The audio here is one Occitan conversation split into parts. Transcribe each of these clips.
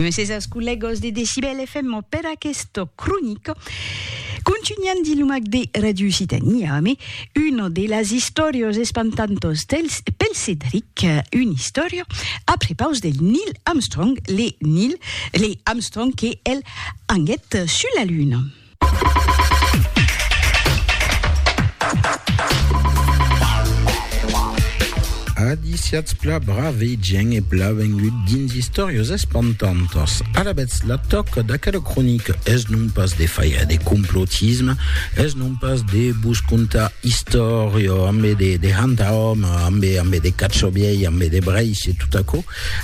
Mrs as collegos de Decibel FM per aquesta cronica. Continuant de lumac de Radio Occitanie, ame, una de las istòrias espantantas dels, pel Cedric, una istòria a prepaus del Neil Armstrong, le Neil, le Armstrong que el anguèt sus la Luna. Adiciatz pla brave gent e pla vengut dins Istòrias espantantas. Alabètz la tòca d'aquela cronica es non pas de faire de complotisme, es non pas de vos contar istòria ambe de, de hanta home, ambe, ambe de catxobiei, ambe de breis e tot aquò,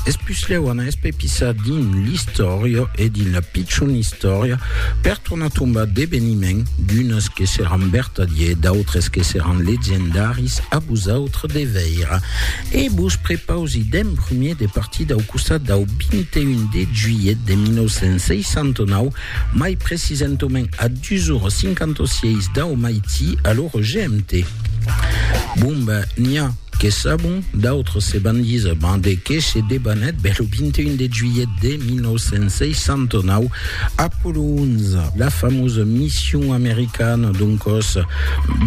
Es puslèu an espepissat dins l'istòria e dins la pichon istòria per tornar tombar d'eveniments, d'unes que seràn vertadiers, d'autres que seràn legendaris, a vosautres de veire. E vos prepausi d'en prumèr de partir dau costat dau 21 de juilhet de 1969, mai precisentament a 2 ora 56 dau maití a l'ora GMT. Bon ben, n'i a! Que sabon, d'autres se van díser ben de qué se debanèt bèl lo 21 de juilhet de 1969, Apollo 11, la famosa mission americana d'un còs,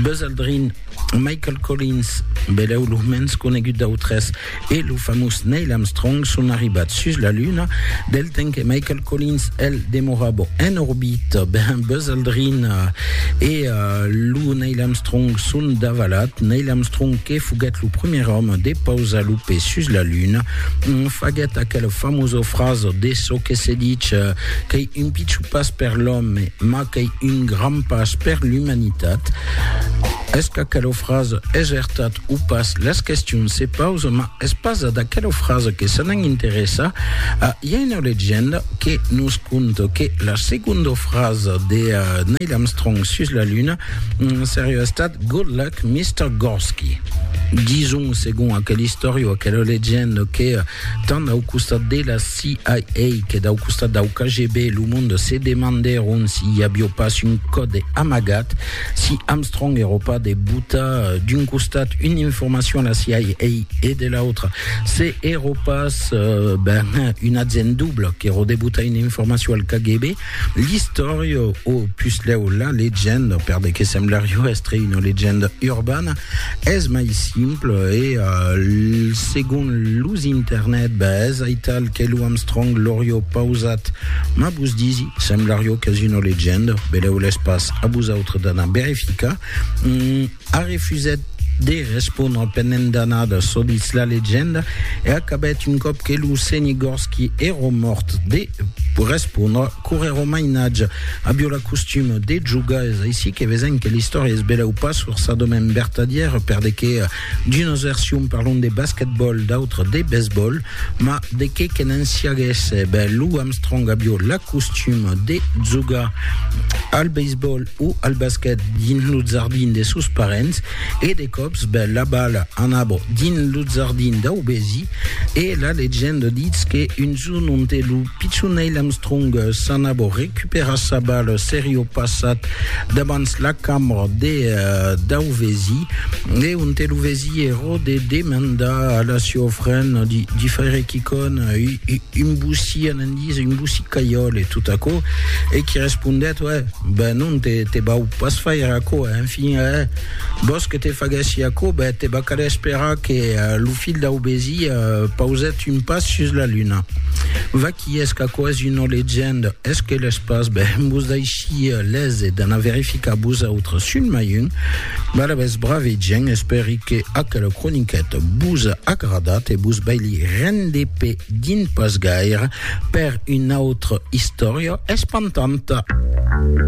Buzz Aldrin, Michael Collins, belèu lo mens conegut d'autres, e lo famós Neil Armstrong son arribats sus la Luna, del temps que Michael Collins, el demorava en orbita ben Buzz Aldrin e lo Neil Armstrong son davalat. Neil Armstrong, que foguèt lo primièr òme de pausar lo pè sus la Luna, faguèt aquela famosa frasa de çò que se dich qu'ei un pichon pas per l'òme, mas qu'ei un grand pas per l'umanitat. Es qu'aquela frasa es vertat o pas? Las questions se pausan, mas Es pas d'aquela frasa que se n'an interessar, i a una legenda que nos conta que la segonda frasa de Neil Armstrong sus la Luna seriá estat Good luck, Mister Gorsky. Dison, segon aquela istòria o aquela legenda, que tant dau costat de la CIA que dau costat dau KGB, lo monde se demandèron si i avió pas un còde amagat, Si Armstrong ero pas de botar d'un costat una informacion a la CIA e de l'autra, se ero pas ben, un agent double qu'ero de botar una informacion al KGB, l'istòria, o puslèu la legenda, per de que semblarió èstre una legenda urbana, es mai simpla e, segon los internet, ben, es aital que lo Armstrong l'aurió pausat. Mas vos disi, semblarió qu'es una legenda, velèu-les pas. a vosautres d'anar verificar, mm, a refusèt de respondre pendent d'anada çò ditz la legenda e acabèt un còp que lo senhe Gorski èro mòrt de respondre corrèro mainatge avió la costuma de jogar es aicí que vesèm que l'istòria es belèu pas forçadament vertadièra per de que D'unas versions parlon de basquetbòl, d'autras de baseball, ma de qué que n'en siaguèsse, ben Lou Armstrong avió la costuma de jogar al baseball o al basquet dins lo jardin de sos parents e de còps ben la bala anava dins lo jardin dau vesi e la legenda ditz que un jorn onte lo Pichon Neil Armstrong s'an abo recuperat sa bal serio passat dabans la cambra de Dauvesi e onte lo vesi ero de demandar a la sieu fren di faire quicon un boussi anandis, un boussi caiol e tot aquo e qui respondèt uè, ben non te vau pas faire aquo e enfin eh, vos que te faguèssi aquo, ben te va caler esperar que lo filh Dauvesi pausèt Tun pas sus la luna. Vaqui es qu'aquò's una legenda, es que l'es pas, ben vos daishia lese d'anar verificar vos autres sul mai un. Balabès brave gent, espèri que aquela croniqueta vos a agradat e vos vai li render pe din pas gaire per una autra istòria espantanta.